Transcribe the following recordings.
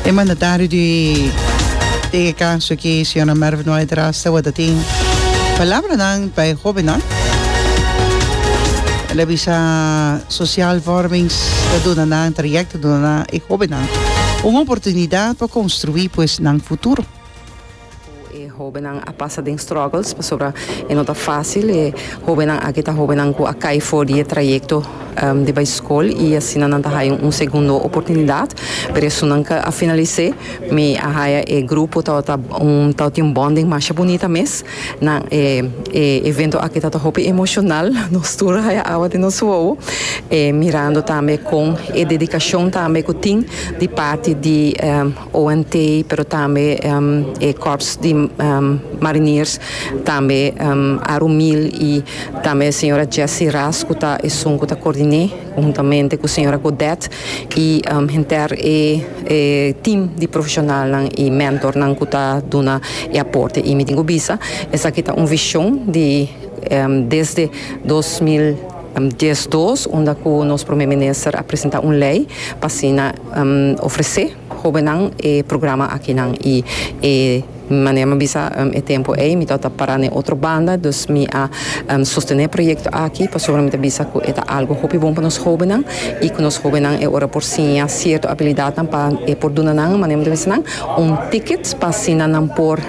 E mandatario di den e caso aki, señora Mervin White Ras, tabata tin palabranan pa e hobennan. El a bisa Social Vormings ta duna nan, trayect ta duna nan, e hobennan, un oportunidad pa construi pues nan futuro. Ku e hóbennan a pasa den struggles pasobra e no ta fásil. E hóbennan aki ta hóbennan ku a kai for di e trayekto di bai skol i asina nan ta haya un segundo oportunidat. Pero esunnan ka a finalis'é. Mi a haya e grupo tabata un tabata tin un bonding masha bunita mes. Nan e e evento aki tabata hopi emoshonal. Nos tur a haya awa den nos wowo mirando tambe kon e dedikashon tambe ku tin di parti di. ONT, pero tambe e Kòrps di Mariniers, tambe Aru Mil i tambe e señora Jessie Ras ku ta esun ku ta koordiné huntamente ku señora Godet i henter e tim di profeshonalnan i mentornan ku ta duna e aporte. I mi tin ku bisa esaki ta un vishon di desde dos mil. Dies dos, unda cu nos Prome Minister a presenta un ley pa asina ofrece hobennan e programa akinan. Y e manera mi a bisa e tempo ey mi tabata para n'e otro banda, dus mi a sostene e proyecto aki pasobra mi ta bisa cu e ta algo hopi bon pa nos hobennan y cu nos hobennan e ora por siña cierto abilidadnan pa e por duna nan, manera mi ta bisa nan, un ticket pa asina nan por,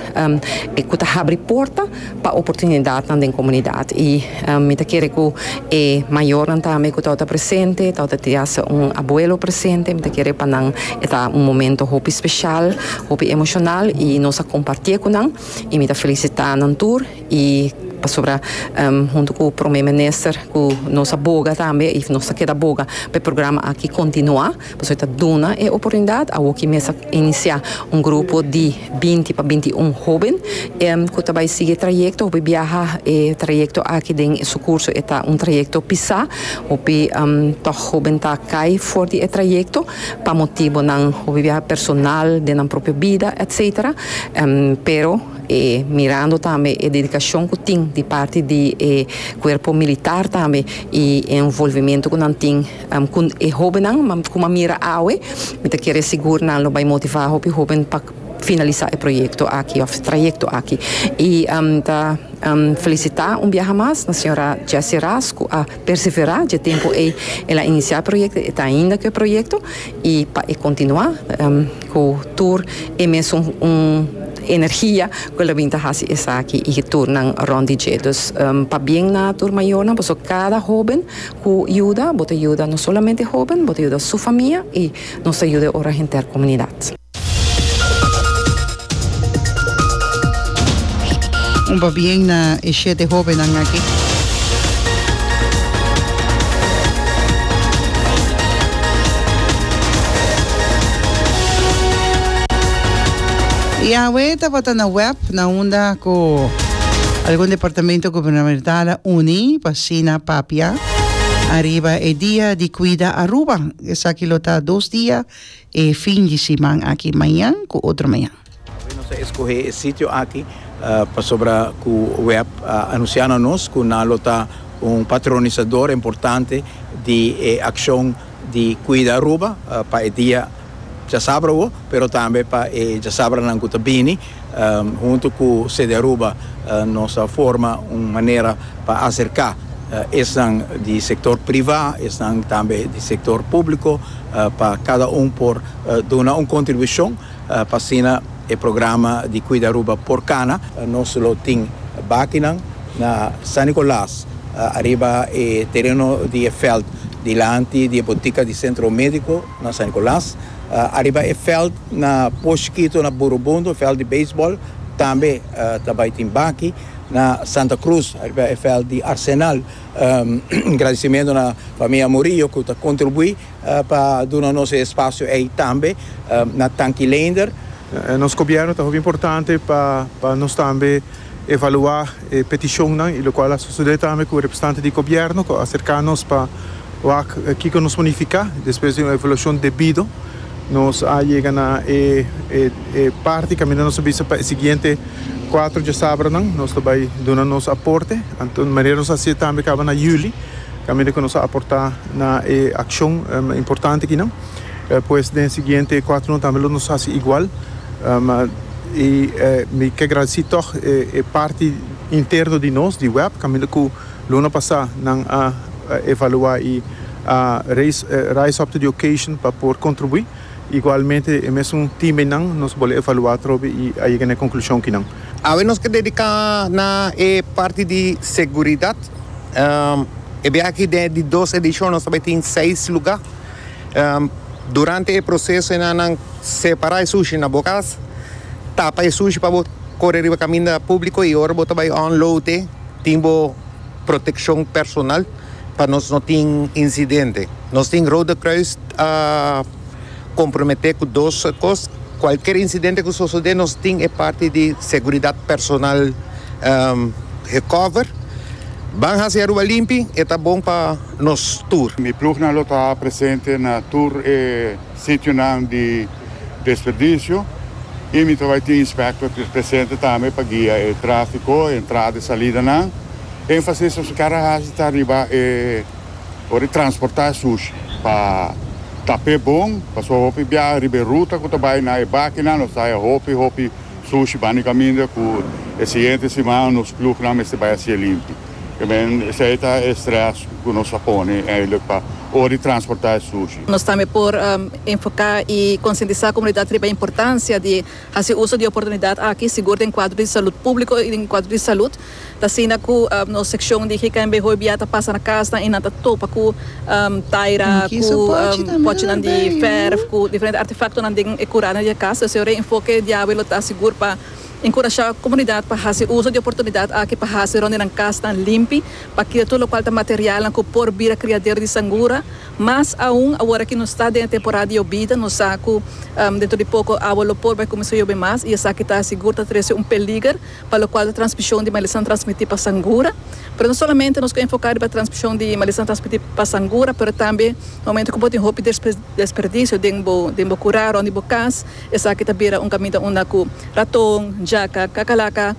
cu ta habri porta pa oportunidatnan den komunidat i mi ta kere ku e mayornan tambe ku ta ota presente, ta ota tin hasta un abuelo presente, mi ta kere pa nan e ta un momento hopi speshal, hopi emoshonal i nos a kompartié ku nan i mi ta felisitá nan tur i pasobra huntu ku Prome Minister ku nos a boga tambe i nos ta keda boga pa e programa aki kontinuá. Pasobra ta duna e oportunidat, awoki mes a inisiá un grupo di binti pa binti i un hóben ku ta bai sigui e trayekto hopi biaha. E trayekto aki den su kurso e ta un trayekto pisá, hopi tòg hóben ta kai for di e trayekto pa motibonan hopi biaha personal den nan propio bida etcétera. Pero e mirando tambe e dedikashon ku tin di parti di e kuerpo militar tambe i e envolvimentu ku nan tin. Cu e hobennan cu a mira awe, mi ta kere sigur nan lo bay motiva hopi hoben pa finalisa e proyecto aki of trayecto aki. Y mi ta felicita un biaha mas na señora Jessie Ras cu a persevera dje tempo ey el a inicia e proyecto, e ta ainda cu e proyecto y pa e continua cu tur e mesun energia cu el a bini ta haci esaki y tur nan rond di dje. Dus pa bien na tur mayornan, boso cada hoben. Cu yuda bo ta yuda no solamente hoben, bo ta yuda su famia y nos ta yuda e ora henter comunidad. Un pabien na e shete hobennan aki. Yahwe tabata na web na unda cu algun departamento gubernamental a uni pa. Sina papia ariba e dia di cuida Aruba. Esaki lo ta dos dia e fin di siman aki, mañan cu otro mañan. Awe nos a escoge e sitio aki pasobra cu web a anuncia na nos cu nan lo ta un patronisador importante di e accion di cuida Aruba pa e dia. Djasabra wou, pero tambe pa e djasabranan ku ta bini. Huntu ku CDAruba nos a forma un manera pa aserká esnan di sektor privá, esnan tambe di sektor públiko pa kada un por duna un kontribushon pa asina e programa di Kuida Aruba por kana. Nos lo tin bakinan na San Nikolas ariba e tereno di e veld dilanti di e botika di Sentro Médiko. Na San Nicolas, ariba e veld na Poshkito na Burubundo, veld di beisbol, tambe ta bai tin baki. Na Santa Cruz, ariba e veld di Arsenal, un gradisimentu na famia Murillo ku ta kontribuí pa duna nos e espasio ei tambe. Na Tanki Leender. Nos gobièrnu ta hopi importante pa nos tambe evaluá e petishonnan i lokual a sosodé tambe ku representante di gobièrnu ku a aserká nos pa wak kiko nos por nifiká. Despues di un evaluashon debido nos a yega na e parti kaminda nos ta bisa pa e siguiente kuater djasabranan nos ta bai duna nos aporte. Anto manera nos a hasié tambe kaba na yüli kaminda ku nos a aportá na e akshon importante akinan. pues den siguiente cuatro no tambe lo nos haci igual y mi ke agradeci tog e parti interno di nos di web caminda cu luna pasa nan a evalua y a rise up to the occasion pa por contribui igualmente e mesun team eynan nos bol'e evalua atrobe y a yega n'e conclusion kinan. Awe nos ke dedica na e parti di seguridad e biaha aki den e di dos edicion nos tabata tin seis lugar. Durante e proseso e nannan separa e sushi na bo kas, tapa e sushi pa bo kore riba kaminda publiko i ora bo ta bai unload e tin bo protekshon personal pa nos no tin insidente. Nos tin Rode Kruis a komprometé ku dos kos, kualker insidente ku sosodé nos tin e parti di seguridat personal gekover. Ban hasi Aruba limpi, e ta bon pa. nos tur. Mi plugnan lo ta presente na tur e sitionan di desperdicio y mi ta bay tin inspector ter presente tambe pa guia e trafico, e entrada y salidanan. Enfasis nos kere haci ta riba e ora di transporta e sushi pa ta pe bon, pasobra hopi biaha riba e ruta cu ta bay na e bakinan nos ta haya hopi hopi sushi bani caminda cu e siguiente siman nos plugnan mester bay haci e limpi. I mean, esei ta e stress ku nos a pone eindelijk pa ora di transportá e sushi. Nos tambe por enfoká i konsientisá komunidat riba e importansia di hasi uso di e oportunidat aki, sigur den kuadro di salut públiko i den kuadro di salut. Ta asina ku nos sekshon di GKNB hoy bia ta pasa na kasnan i nan ta topa ku taira, ku pòchinan di vèrf, ku diferente artefaktonan den e kurana di e kas. Esei reenfoke di awe lo ta sigur pa. Enkurashá komunidat pa hasi uso di oportunidat aki pa hasi rònt di nan kasnan limpi, pa kira tur lokual ta materialnan ku por bira kriadero di sangura. Mas aun awor aki nos ta den e temporada di yobida, nos sa ku dentro di poko awa lo por bai kuminsá yobe mas i esaki ta sigur ta trese un peliger pa lokual ta transmishon di malesanan transmití pa sangura. Pero no solamente nos ke enfoká riba transmishon di malesanan transmití pa sangura pero tambe na momentu ku bo tin hopi desperdisio den bo kurá rònt di bo kas, Esaki ta bira un kaminda unda ku raton, jaka, kakalaka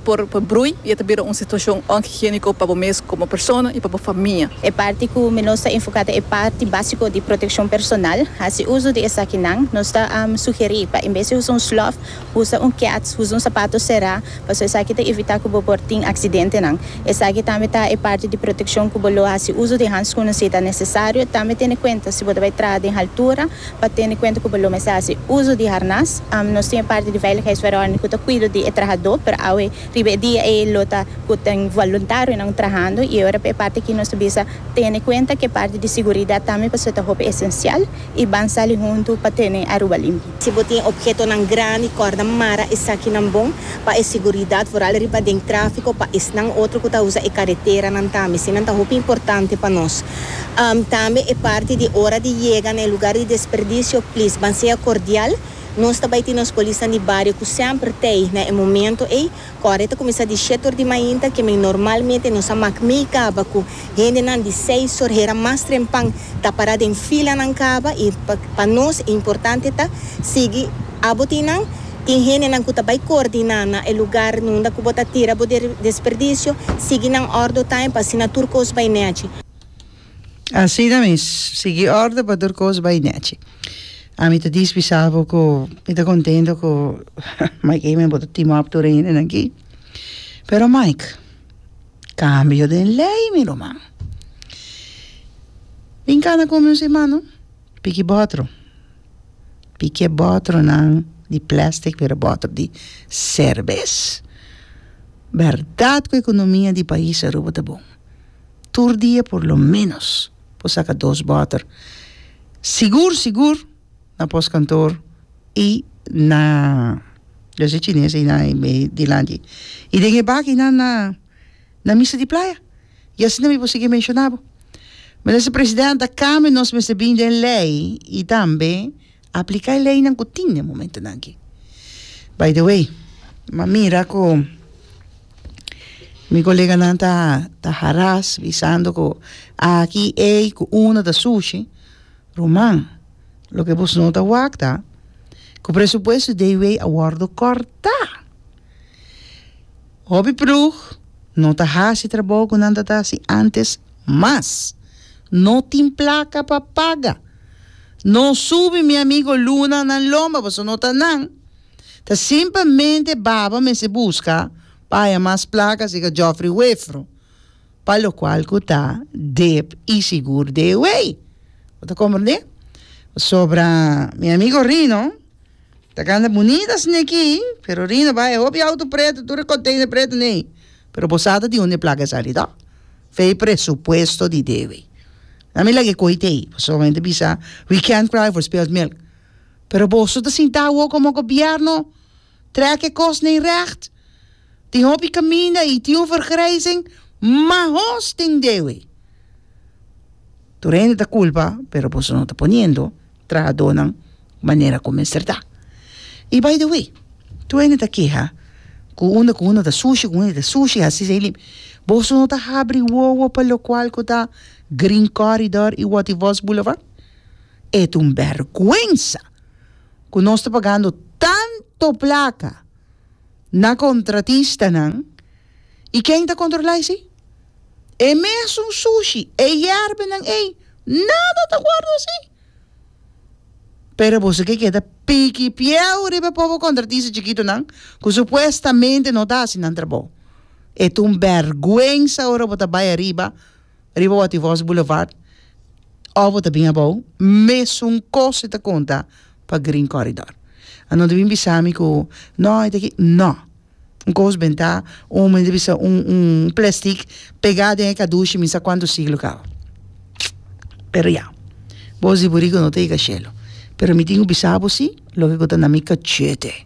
por brui i e ta bira un situashon onhigiéniko pa bo mes komo persona i pa bo famia. E parti ku mi lo sta enfoká ta e parti básiko di protekshon personal. Hasi uso di esakinan. Nos ta sugerí pa en bes di usa un slòf, usa un keats, usa un sapato será, pasobra esaki ta evitá ku bo por tin aksidentenan. Esaki tambe ta e parti di protekshon ku bo lo hasi uso di hanskun si ta nesesario. Tambe tene kuenta si bo ta bai traha den haltura, Pa tene kuenta ku bo lo mester hasi uso di harnas. Nos tin e parti di veiligheidsverordening ku ta kuido di e trahadó, pero awe riba e dia ei lo ta ku ta un voluntarionan trahando. I ora pa e parti aki nos ta bisa tene kuenta ku e parti di siguridat tambe pasobra ta hopi esensial i ban sali huntu pa tene Aruba limpio. Si bo tin ophetonan grandi kòrda mara esakinan bon pa e siguridat vooral riba den tráfiko pa esnan otro ku ta usa e kareteranan tambe. Eseinan ta hopi importante pa nos. Tambe e parti di ora di yega na e lugar di desperdicio, please ban sea cordial. Nos ta bai tin nos polisnan di bario cu semper t'ey na e momento ey. Cu awor e ta cuminsa di shete ur di mainta, kimen normalmente nos a mak mey caba cu hendenan di seis or hera mas trempan ta para den filanan caba y pa nos e importante ta sigui. Abo tin nan, tin hendenan ku ta bai koordiná na e lugar nunda ku bo ta tira bo desperdisio, sigui nan òrdu taim pa asina tur kos bai nèchi. Asina mes, sigui òrdu pa tur kos bai nèchi. Ami ta dispi sa bo ku mi ta kontentu ku Mike Amen bo ta team up tur e hendenan aki. Pero Mike, kambio den lei mi ruman. Bin kana ku mi un simana, piki bòtru. Pike botronan di plastic wera botro di serbes. Berdad cu economia di pais Aruba ta bon. Tur dia por lo menos por saca dos botro. Sigur sigur na postkantoor y na yo si chines y na dilanti. Y den e bakinan na misa di playa. y asina mi por sigui menciona bo. Minister President a cambio nos mester bin den ley y tambe aplica e leynan cu tin den momentonan aki. By the way mi a mira cu mi coleganan ta ta haras bisando cu aki ey cu una ta sushi ruman loke bos no ta wak ta cu presupuesto de ey wey a wordo corta. Hopi ploeg no ta hasi trabou cu nan tabata hasi antes mas no tin placa pa paga. No subi mi amigo Luna nan lomba pasobra no ta nan. Ta simplemente baba mester busca pa haya mas placa sica Geoffrey Wefro pa locual cu ta dep y sigur de ewey. Bo ta comprende? Pasobra mi amigo Rino. Ta kanda bunita sne ki, pero Rino bai e hopi auto preto, tur e container preto nei, pero bo sa ta tin hunde placa esa ri toh? Fei presupuesto di debe. Na mi lag'e cohi t'ei, pasobra bo mente bisa we can't cry for spilt milk, pero boso ta sinta awo como gobierno trek e cos nei recht, tin hopi caminda y tin un vergrijzing, ma ho's tin debe. Tur hende ta culpa, pero boso no ta poniendo. trahadónan manera ku mester ta. I by the way, tur hende ta keha ku unda ku unda ta sushi, ku unda ta sushi hasi esei limi. Boso no ta habri wowo pa lokual ku ta Green Corridor i Wòt i Vòs Boulevard? E ta un bèrgwensa ku nos ta pagando tanto plaka na kontratistanan. I ken ta kontrol'ai si? E mesun sushi, e yerbenan ei, nada ta wòrdu así. Pero boso ke keda piki pieu riba pobo kontratista chikitunan ku supuestamente no ta hasi nan trabou. E ta un bèrgwensa ora bo ta bai ariba, riba Wativos Boulevard òf bo ta bin abou, mesun kos e ta konta pa Green Corridor. Anor ta bin bisa mi ku, no, e ta aki, no. Un kosben ta un men ta bisa un un plestik pegá den e kadushi mi sa kuantu siglo kaba pero ya bos di buriku no ta yega shelu pero mi tin ku bisa bo si loke ku ta na mi kachete.